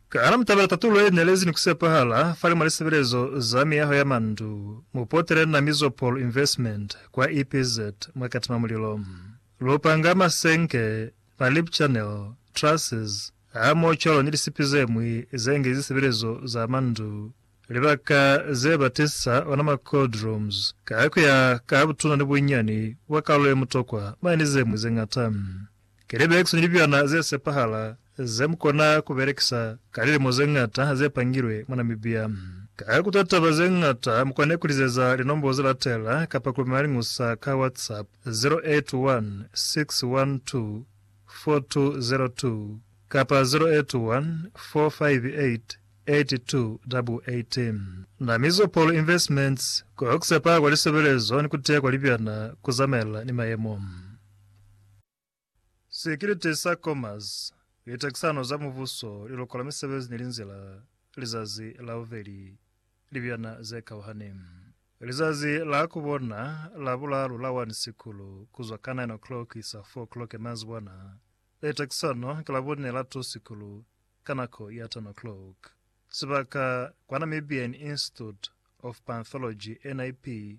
Ka hana mutabela tatulo ye nelezi ni kusepahala fali mwa lisebelezo za miyaho ya mandu, mupotele na Mizopol Investment kwa EPZ mwa Katima Mulilo. Lu panga masenke, ma lip channel, trusses, hamoho cwalo ni lisipi ze ñwi ze nge zisebelezo za mandu, libaka ze ba tisa ona ma cold rooms, ka kuya ka butuna ni bunyani bwa kalulo ye mutokwa, mane ni ze ñwi ze ñata. Ki libekisi ni libyana ze sepahala ze mu kona ku belekisa ka lilimo ze ñata ze pangilwe mwa Namibia. Ka ku ta taba ze ñata, mu kone ku lizeza linombo ze latela kapa ku lumela liñusa ka WhatsApp, 0816124202 kapa 0814588288. Namizo Paul Investments, Ku sepa kwa lisebelezo ni ku tiya kwa libyana ku zamaelana ni mayemo. Sekelete sa Comas, Litakisano za Mubuso, Lilokola Misebezi ni Linzila, Lizazi la Bubeli, Libyana ze Kauhani. Lizazi la ku bona la bulalu la 1 Sikulu, ku zwa ka 9 o'clock kuisa 4 o'clock ya manzibwana, e takisano ki la bune la 2 Sikulu, ka nako ya 10 o'clock. Sibaka, kwa Namibian Institute of Panthology, NIP,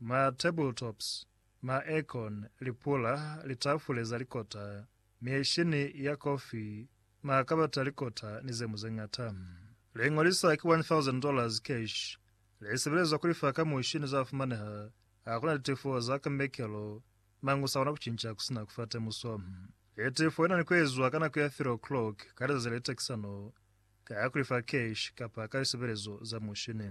Ma tabletops, ma aircon, lipula, litafule za likota, mieshini ya kofi, makabata a likota ni ze mu ze ñata. Le ñolisa ki $1,000 cash le sebelezwa ku lifa ka mushini za fumaneha ha ku na litefo za ka mekelo mañi u sa kona ku cinca ku si na ku fa temuso. Le tefo i na ni ku ezwa ka nako ya 3 o'clock ka lizazi le litakisano ka ku lifa cash kapa ka lisebelezo za mushini.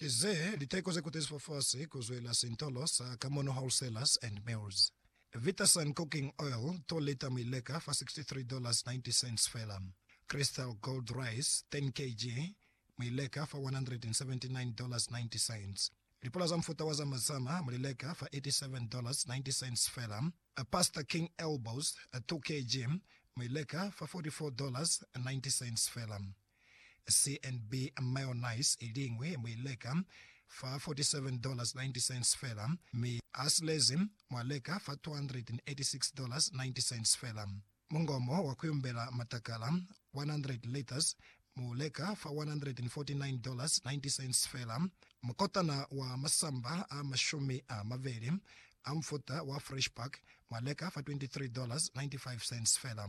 Ki ze liteko ze kutezizwe fasi ku zwela sintolo sa Kamono Wholesalers and Mills. Vitasun Cooking Oil, 2 lita mi leka fa $63.90 fela. Crystal Gold Rice, 10 kg, mi leka fa $179.90. Lipula za mufuta wa za mazama mu li leka fa $87.90 fela. Pasta King Elbows, 2 kg, mi leka fa $44.90 fela. CNB mayonnaise i liñwi mu i leka fa $47.90 fela, mi ha silezi mwa leka fa $286.90 fela. Mungomo wa ku yumbela matakala, 100 litres, mu leka fa $149.90 fela. Mukotana wa masamba a mashumi a mabeli a mufuta wa Fresh Pack mwa leka fa $23.95 fela.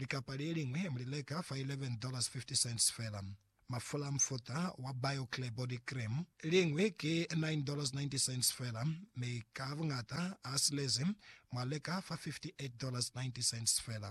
Likapa le liñwi mu li leka fa $11.50 fela. Mafula a mufuta wa BioClear Body Cream liñwi ki $9.90 fela, mi ka buñata a silezi mwa leka fa $58.90 fela.